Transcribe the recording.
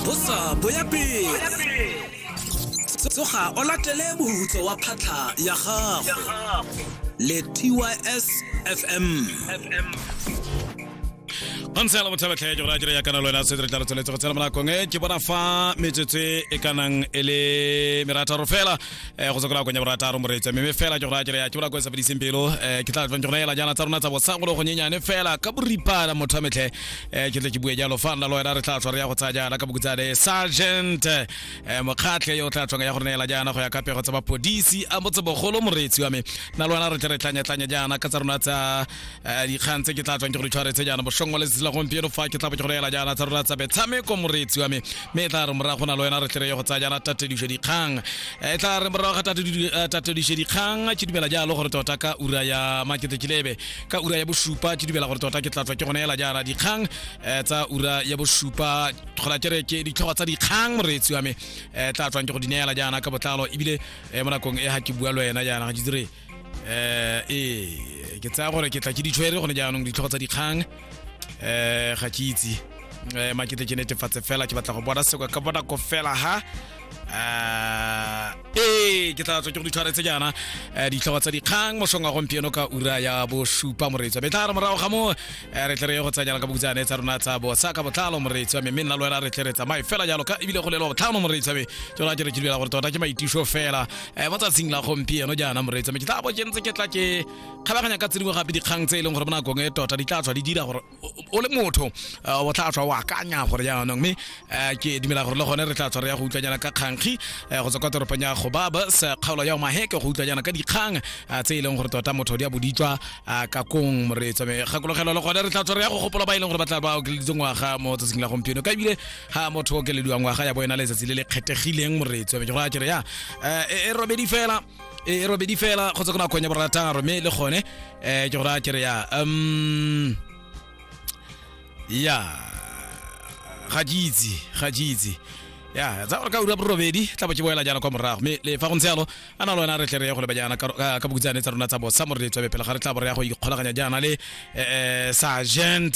bosa boya pele tsoga o latele mohutso wa phatlha ya gago le tys fm ontse la botlhabetlhe ke go raya ya kana le wena se re tla re tsweletse go tsena mo nakong e ke bona fa metsotso e ka nang e le merataro fela eh, go tswa ko nakong ya borataro moreetsa mme fela ke go raya ya ke bona ko e sa fediseng pelo eh, ke tla tlang ke go neela jaana tsa rona tsa bosa go le go nyenyane fela ka boripana motho wa metlhe eh ke tle ke bue jalo fa nna lo wena re tla tswa re ya go tsaya jaana ka bokutsane sergeant eh mokgatlhe yo o tla tswang ya go re neela jaana go ya ka pego tsa mapodisi a motsebogolo moreetsi wa me nna lo wena re tle re tlanyatlanya jaana ka tsa rona tsa eh, dikgang tse ke tla tswang ke go di tshwaretse jaana boshong wa letsatsi la gompieno fa ke tla bo ke go neela jaana tsa rona tsa metshameko moreetsi wa me mme e tla re morago na lo wena re tle re ye go tsaya jaana tatedišo dikgang e tla re morago ga tatedišo dikgang ke dumela jalo gore tota ka ura ya maketekilebe ka ura ya bosupa ke dumela gore tota ke tla tswa ke gone ela jaana dikgang um tsa ura ya bosupa kgona kere ke ditlhogo tsa dikgang moreetsi wa me um tla tswang ke go di neela jaana ka botlalo ebile um mo nakong e ga ke bua le wena jaana ga ke dire um ee ke tsaya gore ke tla ke ditshwere gone jaanong ditlhogo tsa dikgang um ga ke itse um makete ke netefatse fela ke batla go bona sekwa ka bonako fela ha Ah, ee ke tla tswa ke go ditshwaretse jaana um ditlhogo tsa dikgang mosong wa gompieno ka ura ya bosupa moreetsi wa me tla re morago ga moo eh, re tle re ye go tsanyana ka bokutsane tsa rona tsa bosa ka botlalo moreetsi wa me mme nna le wena re tle re tsamaye fela jalo ka ebile go lelo botlhano moreetsi wa me tsona ke re ke dumela gore tota ke maitiso fela um mo tsatsing la gompieno jaana moreetsi wa me ke tla bo ke ntse ke tla ke kgabaganya ka tsedingwe gape dikgang tse e leng gore mo nakong e tota di tla tswa di dira gore o le motho uh, o tla tswa wa akanya gore jaanong mme uh, ke dumela gore le gone re tla tshwara ya go utlwanyana ka kgankgi uh, go tswa kwa toropong ya gobaba sa kgaolo ya omaheke go utlwanyana ka dikgang uh, tse e leng gore tota motho di a boditswa uh, ka kong moreetso mme kgakologelo le gone re tla tshwara ya go gopola ba e leng gore ba tla ba okeleditse ngwaga mo tsatsing la gompieno ka ebile ga motho o okelediwa ngwaga ya bo ena letsatsi le le kgethegileng moreetso mme ke go a kere ya uh, e, e robedi fela e robedi fela kgotsa go na kgonya borataro mme le gone um ke go raya kere ya um ya ga ke itse ga ke itse ya tsa gore ka ura borobedi tla bo ke boela jaana kwa morago mme le fa go ntse yalo a na le wena re tle re ye go leba jaana ka ka- ka bokutsane tsa rona tsa bosa mo re letswa pele ga re tla bo re ya go ikgolaganya jaana le um sergent